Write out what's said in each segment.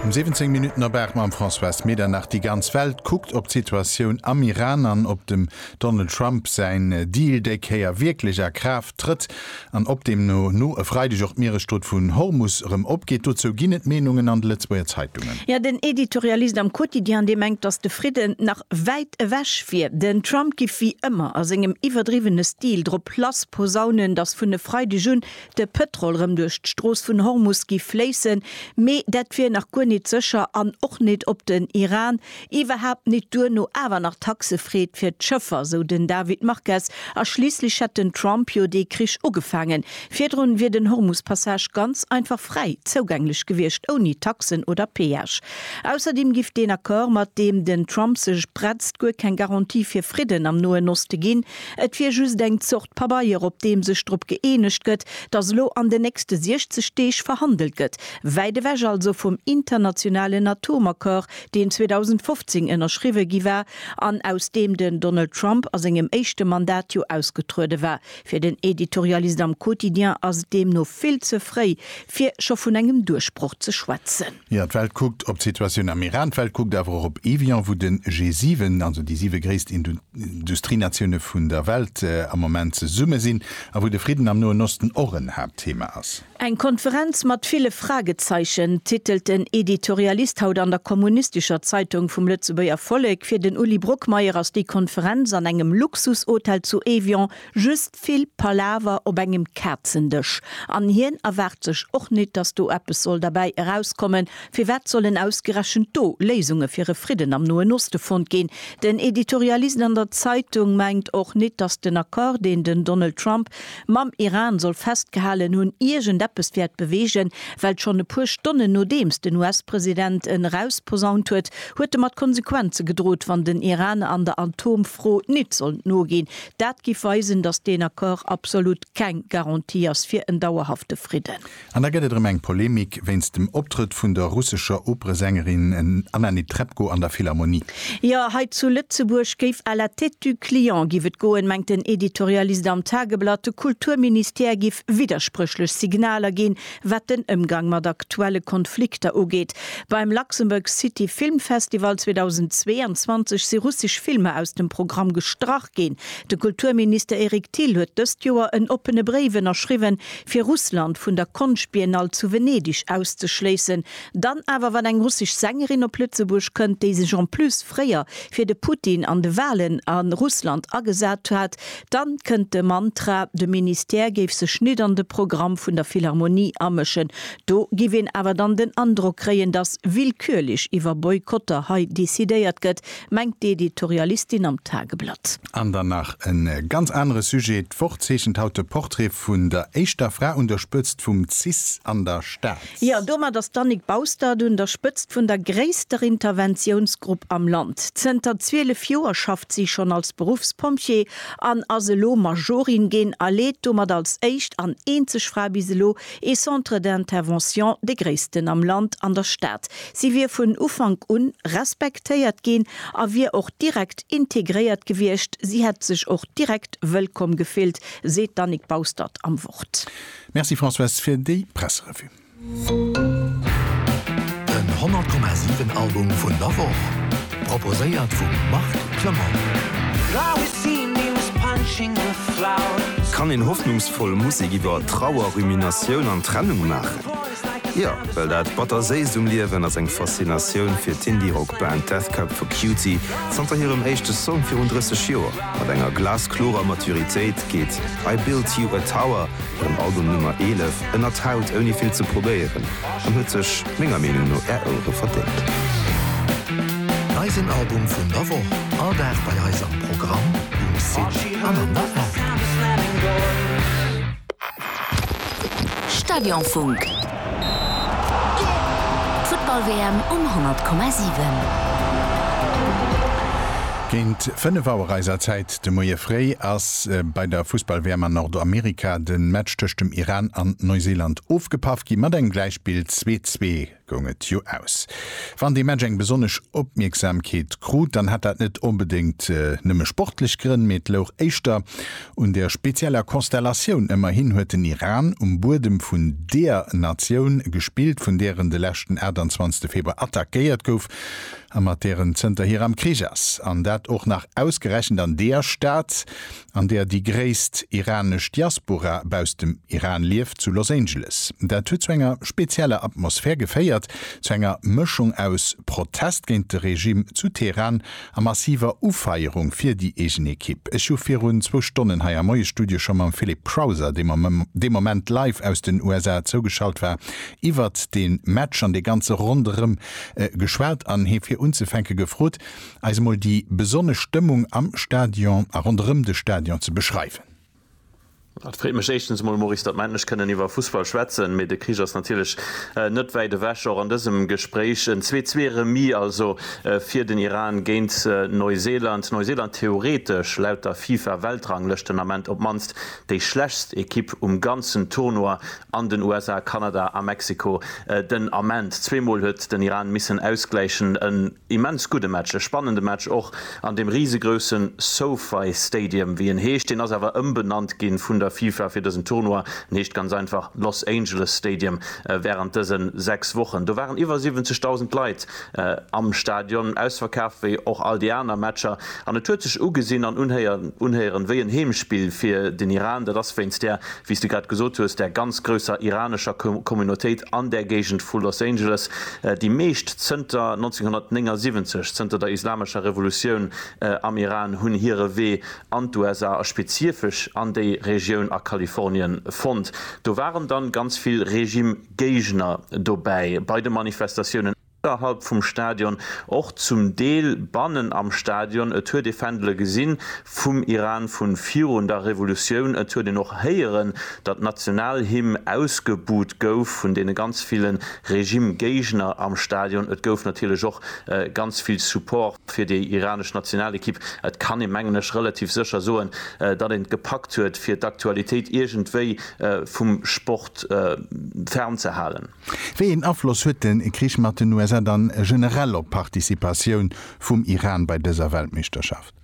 Um 17 Minutten op 8 mam Françoise Medernach. Déi ganz Welt kuckt op d'Situatioun am Iran an ob dem Donald Trump säin Deal déi Kéier wierklech a Kraaft trëtt. an ob deemno no e Freideg och d'Mieresstrutt vun Hormus erëm opgeet, dozou ginn et Meenungen an de Lëtzebuerger Zeitungen. Jo, den Editorialist am Quotidien, dee mengt, datt de Fridden nach wäit ewech wier. Den Trump giff wéi ëmmer a sengem iwwerdriwwene Stil drop lass posaunen, datt vun e Freideg un de Pëtrol erëm duerch d'Strooss vun Hormus giff fléissen, mee dat wier nach guer nit sécher an och nit op den Iran Iwwerhaapt nit, duerno awer nach Taxefreed fir d'Schëffer, sou den David Marquez, a schliisslech hätt den Trump jo dee Krich ugefaangen. Virdrun wier den Hormus-Passage ganz einfach fräi zougänglech gewiescht, ouni Taxen oder Peage. Ausserdeem giff deen Accord, mat deem den Trump sech bretzt, guer keng Garantie fir Fridden am Noen Oste ginn. Et wier just eng Zort Pabeier, op deem sech drop gëeenegt gëtt, datt elo an den nächste 60 Deeg verhandelt gëtt, wäit ewech also vum internationalen Atomaccord, deen 2015 ënnerschriwwe gi war an aus deem den Donald Trump a sengem éischte Mandat jo ausgetruede war. Fir den Editorialist am Quotidien ass et deemno vill ze fréi, fir scho vun engem Duerchbroch ze schwätzen. Jo, d'Welt kuckt op d'Situatioun am Iran, d'Welt kuckt awer och op Evian, wou de G7, also déi siwe gréisst Industrienatioune vun der Welt, am Moment zesumme sinn a wou de Fridden am Noen Osten och en Haaptthema ass. Eng Konferenz mat ville Fragezeichen, titelt den Editorialist haut an der kommunistescher Zeitung vum Lëtzebuerger Vollek. Fir den Uli Brockmeyer ass déi Konferenz an engem Luxushotel zu Évian just vill Palaver op engem Kazendësch. An hien erwaart sech och nit, datt do eppes soll derbäi erauskommen. Firwat sollen ausgerechent do Léisunge fir e Fridden am Noen Oste fonnt ginn? Den Editorialist an der Zeitung mengt och nit, datt den Accord, deen den Donald Trump Mam Iran soll festgehalen hunn, iergend eppes wäert beweegen, well schonn e puer Stonnen nodeems den US-President en erausposaunt huet, huet e mat Konsequenze gedrot, wann den Iran an der Atomfro nit sollt noginn. Dat giff weisen, datt deen Accord absolut keng Garantie ass fir en dauerhafte Fridden. An da gëtt et erëm eng Polemik wéinst dem Optrëtt vun der russescher Operesängerin Anna Netrebko an der Philharmonie. Jo, hei zu Lëtzebuerg géif à la tête du client giff et goen, mengt den Editorialist am Tageblatt. De Kulturministère giff widderspréchlech Signaler ginn, wat den Ëmgang mat aktuelle Konflikter ugeet. Beim Luxembourg City Film Festival 2022 si russesch Filmer aus dem Programm gestrach ginn. De Kulturminister Eric Thill huet dëst Joer en oppene Bréif ënnerschriwwen, fir Russland vun der Konschtbiennale zu Venedig auszeschléissen, dann awer wann eng russesch Sängerin op Lëtzebuerg kënnt, déi sech en plus fréier fir de Putin an de Walen a Russland agesat hat, dann kënnt de Mantra, de Ministère géif sech nit an de Programm vun der Philharmonie amëschen. Do giff een awer dann den Androck kréien, dass willkürlech iwwer Boykotter hei decidéiert gëtt, Mengt d'Editorialistin am Tageblatt. An dann nach e ganz anere Sujet, D'Woch zeechent haut de Portrait vun der éischter Fra un der Spëtzt vum cis an der Stad. Jo, an domat ass d'Annick Baustert un der Spëtzt vun der gréisster Interventiounsgrupp am Land. Zënter 12 Joer schafft si schonn als Beruffspompjee an ass elo Majorin ginn a leet domat als éischt an eenzeg Fra bis elo ee Centre d'intervention, dee gréissten am Land, an der Stad. Si wier vun Ufank un respektéiert ginn a wier och direkt integréiert gewiescht. Si hätt sech och direkt wëllkomm gefillt, seet d'Annick Baustert am Wort. Merci Françoise fir déi Presserevue. Den 100,7 Album vun der Woch proposéiert vum Marc Clement. Kann een hoffnungsvoll Musek iwwer Trauer, Ruminatioun an Trennung maachen? Jo, well dat Batterséisst um Liewen ass eng Faszinatioun fir d'Indie-Rock-Band Death Cab for Cutie. Zanter hirem éischte Song virun 30 Joer, mat enger glasklorer Maturitéit, geet I Built You a Tower, hirem Album Nummer 11, ënnert d'Haut ouni vill ze probéieren an huet sech menger Meenung no Är Ouere verdéngt. Eisen Album vun der Woch, all Dag bei eis am Programm, um Site an an der App. Stadionfunk, d'Futtball-WM um 100,7. Géint 5 Auer eiser Zäit de Moie fréi ass bei der Fussball-WM an Nordamerika de Match tëscht dem Iran an Neuseeland ofgepaff gi mat engem Gläichspill, 2, 2. goung et jo aus. Wann dee Match eng besonnesch Opmierksamkeet krut, dann hat dat net onbedéngt nëmme sportlech Grënn, mee et louch éischter un der spezieller Konstellatioun. Ëmmerhin huet den Iran um Buedem vun deer Natioun gespillt, vun där en de leschten 28 Februar attackéiert gouf a mat där en zënterhier am Krich ass, an dat och nach ausgerechent an deer Stad, an där déi gréisst iranesch Diaspora baus dem Iran lieft, zu Los Angeles. Dat huet zu enger spezieller Atmosphär geféiert, zu enger Mëschung aus Protest géint de Regime zu Teheran a massiver Ufeierung fir déi eegen Ekipp. Ech hu virun zwou Stonnen hei am Moiesstudio scho mam Philip Crowther, dee dee Moment live aus den USA zougeschalt war, iwwert dee Match an dee ganze Ronderëm geschwat an hie fir unzefänke gefrot, eis emol déi besonnesch Stëmmung am Stadion a ronderëm de Stadion ze beschreiwen. Et freet mech éischtens emol, Maurice, datt mer endlech kënnen iwwer Fussball schwätzen, mee de Krich ass natierlech net wäit ewech, och an dësem Gespréich. En Zwee-zwee-Remis also fir den Iran géint Neuseeland. Neuseeland theoretesch, laut der FIFA-Weltranglëscht, den Ament op d'mannst déi schlechtst Ekipp um ganzen Tournoi an den USA, Kanada a Mexiko den Ament. Zweemol huet den Iran missen ausgläichen. immens gudde Match, e spannende Match och an deem risegroussen SoFi Stadium, wéi en heescht. Deen ass awer ëmbenannt ginn vun der FIFA fir dësen Tournoi. En heescht ganz einfach Los Angeles Stadium wärend dësen 6 Wochen. Do waren iwwer 70.000 Leit am Stadion, ausverkaaft wéi och all déi aner Matcher. An et huet sech ugesinn an unhéieren wéi en Heemspill fir den Iran. Dat ass wéinst där wéi s de grad gesot hues, der ganz grousser iranescher Communautéit an där Géigend vu Los Angeles, déi meescht zënter 1979, zënter der islamescher Revolutioun am Iran, hunn hire Wee an d'USA a spezifesch an déi Regioun a Kalifornien fonnt. Do waren dann ganz vill Regime-Géigner dobäi bei de Manifestatiounen. Ënnerhalb vum Stadion, och zum Deel bannen am Stadion. Et huet ee Fändele gesinn vum Iran vu virun der Revolutioun. Et huet een och héieren, datt d'Nationalhymn ausgebuht gouf vun deene ganz ville Regime-Géigner am Stadion. Et gouf natierlech och ganz vill Support fir déi iranesch Nationalekipp. Et kann ee, mengen ech, relativ sécher soen, datt een et gepackt huet, fir d'Aktualitéit iergendwéi vum Sport fernzehalen. Wéi een Afloss huet de Krich mat den USA dann generell op d'Participatioun vum Iran bei dëser Weltmeeschterschaft?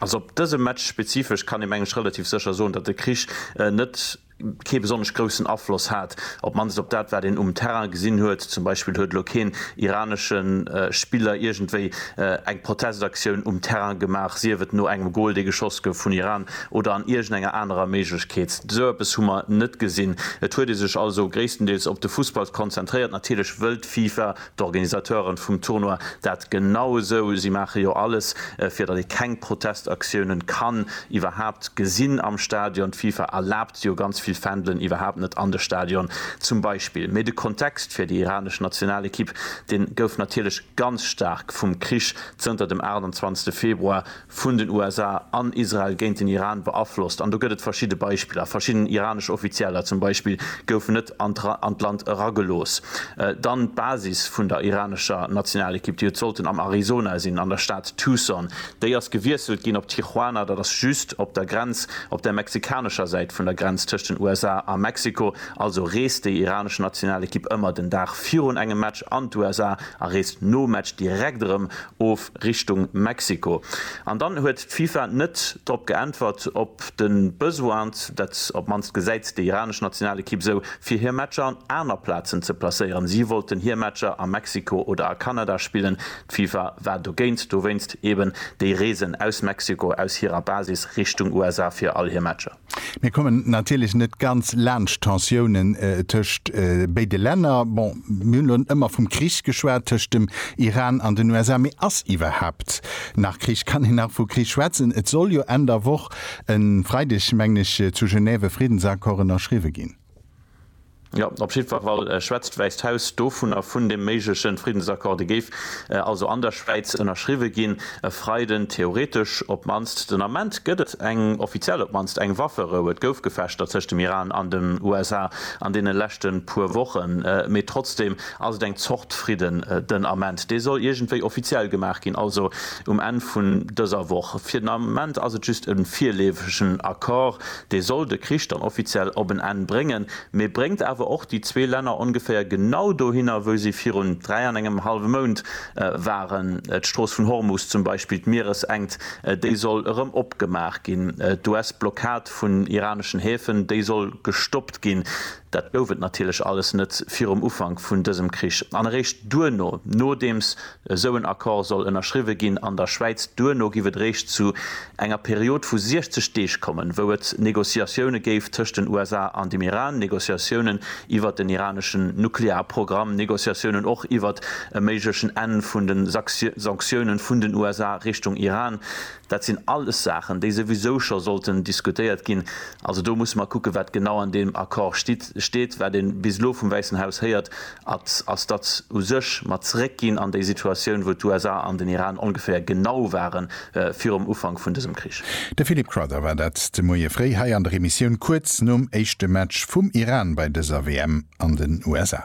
Also op dëse Match spezifesch kann ee meng ech relativ sécher soen, datt de Krich net kee besonnesch groussen Afloss hat, op d'mannst op dat wat een um Terrain gesinn huet. Zum Beispill huet elo keen iranesche Spiller iergendwéi eng Protestaktioun um Terrain gemaach, sief et no engem Gol dee geschoss gouf vun Iran oder an iergendenger anerer Méiglechkeet. Esou eppes hu mer net gesinn. Et huet ee sech also gréisstendeels op de Fussball konzentréiert. Natierlech wëllt d'FIFA, d'Organisateuren vum Tournoi, dat genau esou. Si maache jo alles, fir datt ee keng Protestaktiounen kann iwwerhaapt gesinn am Stadion. D'FIFA erlaabt jo ganz vill Fändelen iwwerhaapt net an de Stadion zum Beispill. Mee de Kontext fir déi iranesch Nationalekipp, dee gouf natierlech ganz staark vum Krich zënter dem 28. Februar vun den USA an Israel géint den Iran beaflosst an do gëtt et verschidde Beispiller. Verschidden iranesch Offizieller zum Beispill goufen net an d'Land eragelooss. Dann d'Basis vun der iranescher Nationalekipp, déi huet sollten am Arizona sinn, an der Stad Tucson, déi ass gewiesselt ginn op Tijuana, dat ass just op der Grenz, op der mexikanescher Säit vun der Grenz tëscht den USA a Mexiko. Also reest déi iranesch Nationalekipp ëmmer den Dag virun engem Match an d'USA a reest nom Match direkt erëm of. Richtung Mexiko. An dann huet d'FIFA net drop geäntwert op de Besoin, dat op d'mannst gesäit déi iranesch Nationalekipp esou, fir hir Matcher an aner Plazen ze placéieren. Si wollten hir Matcher a Mexiko oder a Kanada spillen. D'FIFA war dogéint, dowéinst eben déi Reesen aus Mexiko aus hirer Basis Richtung USA fir all hir Matcher. Mir kommen natierlech net ganz laanscht d'Tensiounen tëscht béide Länner. Bon, mir hunn elo ëmmer vum Krich geschwat tëscht dem Iran an den USA. Mee ass iwwerhaapt nach Krich? Kann een nach vu Krich schwätzen? Et soll jo Enn der Woch, e Freideg mengen ech, zu Genève e Friddensaccord ënnerschriwwe ginn. Jo, op jiddwer Fall schwätzt d'Wäisst Haus dovun a vun deem méiglechen Friddensaccord. Dee géif also an der Schwäiz ënnerschriwwe ginn e Freiden. Theoretesch op d'mannst. Den Ament gëtt et eng, offiziell op d'mannst eng Wafferou. Et gouf Gefechter tëscht dem Iran an den USA an deene leschte puer Wochen, mee trotzdeem ass et eng Zort Fridden den Ament. Dee soll iergendwéi offiziell gemaach ginn, also um Enn vun dëser Woch. Fir den Ament ass et just e virleefegen Accord. Dee soll de Krich dann offiziell op en Enn bréngen, mee bréngt awer och déi zwee Länner ongeféier genau dohinner, wou si virun dräi an engem hallwe Mount waren. D'Strooss vun Hormus zum Beispill, d'Mieresengt, déi soll erëm opgemaach ginn. D'US-Blockad vun iraneschen Häfen, déi soll gestoppt ginn. Dat gouf et natierlech alles net virum Ufank vun dësem Krich. An eréischt duerno, nodeems esou en Accord soll ënnerschriwwe ginn an der Schwäiz, duerno giff et eréischt zu enger Period vu 60 Deeg kommen, wou et Négociatioune géif tëscht den USA an dem Iran, Négociatiounen iwwert den iraneschen Nuklearprogramm, Négociatiounen och iwwert e méiglechen Enn vun de Sanktiounen vun den USA Richtung Iran. Dat sinn alles Saachen, déi souwisou scho sollten diskutéiert ginn. Also do musse mer kucken, wat genau an deem Accord stitt, steet. Wat ee bis elo vum Wäissen Haus héiert, at, ass, datt u sech mer zréckginn an déi Situatioun, wou d'USA an den Iran ongeféier genau ware virum Ufank vun dësem Krich. De Philip Crowther war dat de Moie fréi hei an der Emissioun kuerz nom éischte Match vum Iran bei dëser WM an den USA.